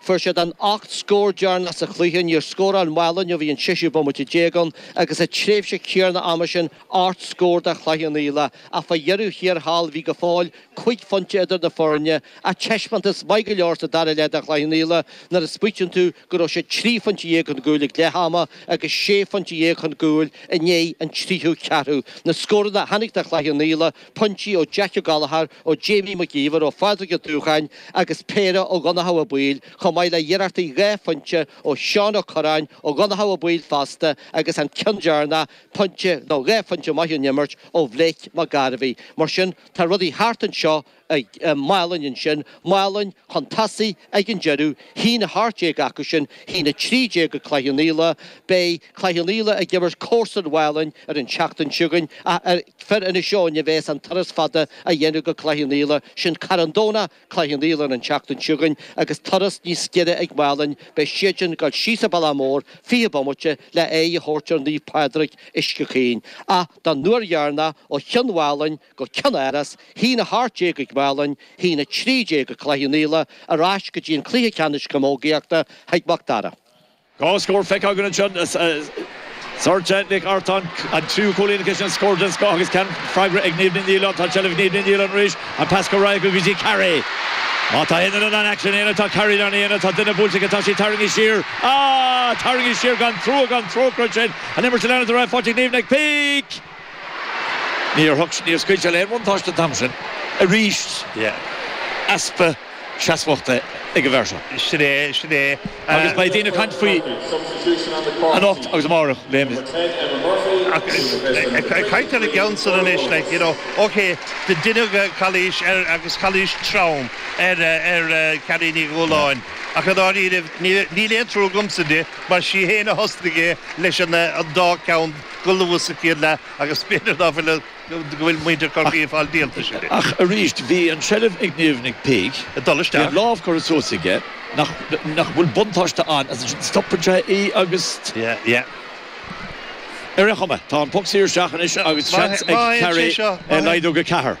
Fuair siad an ocht scór deireanach sa chluiche, níor scóráil Málainn ó bhí an séisiú bomaite déag ann agus sa tréimhse chéanna ama sin ocht scór do Chloich Cheann Fhaola ach fá dheireadh thiar thall bhí go fóill cúig phointe idir na foirne ach teispeántas maith go leor sa dara leath do Chloich Cheann Fhaola nuair a smaoitíonn tú go raibh siad trí phointe dhéag chun gcúil ag leath ama agus sé phointe dhéag chun gcúil i ndiaidh an tríú ceathrú. Na scóranna a tháinig do Chloich Cheann Fhaola. pointí ó Jack Ó Gallchóir, ó Jamie Mac Íomhair ó Phádraig Ó Dubhcháin agus péire ó Dhonnchadh Ó Baoill, chomh maith le hiarrachtaí dhá phointe ó Sheán Ó Curráin, ó Dhonnchadh Ó Baoill fosta agus an ceann deireanach, pointe nó dhá phointe maith ón imirt ó Bhlake Mac Gairbheith. Mar sin, tá rudaí thart anseo i Málainn ansin, Málainn chun tosaigh ag an deireadh, a haon 18 acu sin, a haon 13 ag Cloich Cheann Fhaola. Beidh Cloich Cheann Fhaola ag imirt comharsan Mhálainn ar an tseachtain chugainn ach ar. Fir Inis Eoghain a bheas an turas fada a dhéanamh go Cloich Cheann Fhaola, sin Carn Domhnach, Cloich Cheann Fhaola an tseachtain seo chugainn agus turas níos giorra ag Málainn, beidh siadsan ag dul síos an Bealach Mór, 20 bomaite, le aghaidh a thabhairt ar Naomh Pádraig, Uisce Chaoin. Ach don uair dheireanach ó Chionn Mhálainn go Cionn Iorrais, a haon 18 ag Málainn, a haon 13 ag Cloich Cheann Fhaola, ar ais go dtí an cluiche ceannais camógaíochta chuig Mac Dara. Dhá scór feicthe againn anseo, Sorcha Nic Artáin, an tríú cúilín aici sin, scór den scoth agus ceann freagra ag Niamh Ní Nialláin. Tá seilbh ag Niamh Ní Nialláin arís, an pas go réidh aici go dtí Carrie. Má tá aon duine in ann aicsean a dhéanamh, tá Carrie in ann a dhéanamh, tá duine buailte aici, tá sí tarraingthe siar, á! tarraingthe siar gan trua gan trócaire tríd an imirt ag leanúint ar aghaidh, faighte ag Niamh Nic Píc! Níor thug sé, níor scaoil sé le aon bhuntáiste an t-am sin. Arís, easpa seasmhachta ag an bhfear seo. Sin é, sin é. Agus beidh daoine ag caint faoi anocht agus amárach, léimfhite. Ag caint ar an gceann san anois, like, you know, OK, deineadh calaois ar, agus calaois trom ar, ar Carrie Ní Dhúláin, ach i ndáiríre níl aon trua agamsa di mar sí fhéin a thosnaigh é leis an dá ceann. go luath sa chéad leath agus b'fhéidir ná fuil go bhfuil muintir Chorcaí ag fáil díoltais air. Ach arís, bhí an seilbh ag Niamh Nic Píc, ag dul isteach, bhí an lámh curtha suas aige, nach bhfuil buntáiste ann as ansin stopann sé í agus. yeah yeah. Ar aon chuma, tá an poc saor isteach anois agus seans ag Carrie é laghdú go ceathair.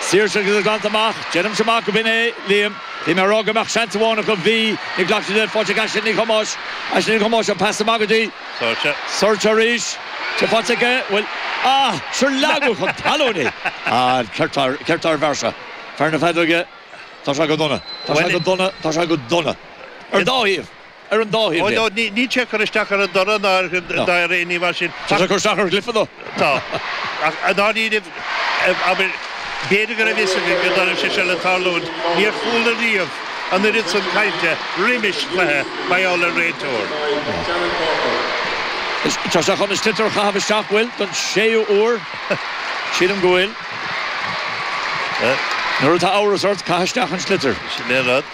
Saoirse agus é glanta amach. Deirimse amach go binn é, Liam. Bhí mé a rá go mbeadh seans amháin acu. Bhí. Níor ghlac siad leis. Faighte ag Aisling Nic Thomáis. Aisling Nic Thomáis, an pas amach go dtí. Saoirse. Saoirse arís. Tá sé faighte aici. Bhuel. Ah! Sure leagadh chun talún í! An ceart ceart dár bhfear seo. Fear na feadóige. Tá sé go dona. Tá sé go dona. Tá sé go dona. Ar an dá thaobh. ar an dá thaobh de. Níl sé ag cur isteach ar an dtoradh ná ar dhath ar aon ní mar sin. Tá sé ag cur isteach ar imreoirí. Tá. Ach i ndáiríre, abair, b'fhéidir go raibh fhios aige go dtiocfadh sé seo le tarlúint, níor chuala riamh an oiread san cainte roimis chluiche, mar gheall ar réiteoir. Tá sé chun an sliotar a chaitheamh isteach, bhuel, don séú huair, sílim go bhfuil. Nuair atá amhras ort, caith isteach an sliotar. Sin é an rud.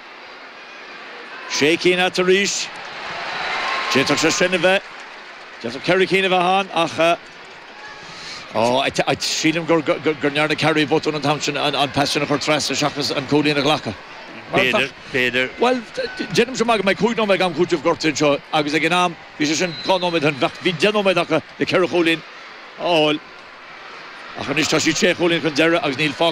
sé cinn atá arís. D'fhéadfadh sé sin a bheith, d'fhéadfadh ceithre cinn a bheith ann ach sílim gur ndearna Carrie botún an t-am sin an pas sin a chur trasna seachas an cúilín a ghlacadh. B'fhéidir, b'fhéidir. Bhuel, déanaimse amach go mbeidh cúig nóiméad am cúitimh gortaithe anseo agus ag an am, bhí sé sin dhá nóiméad ó shin, bheadh, bhí deich nóiméad acu le ceithre chúilín a fháil ach anois tá siad sé chúilín chun deiridh agus níl fágtha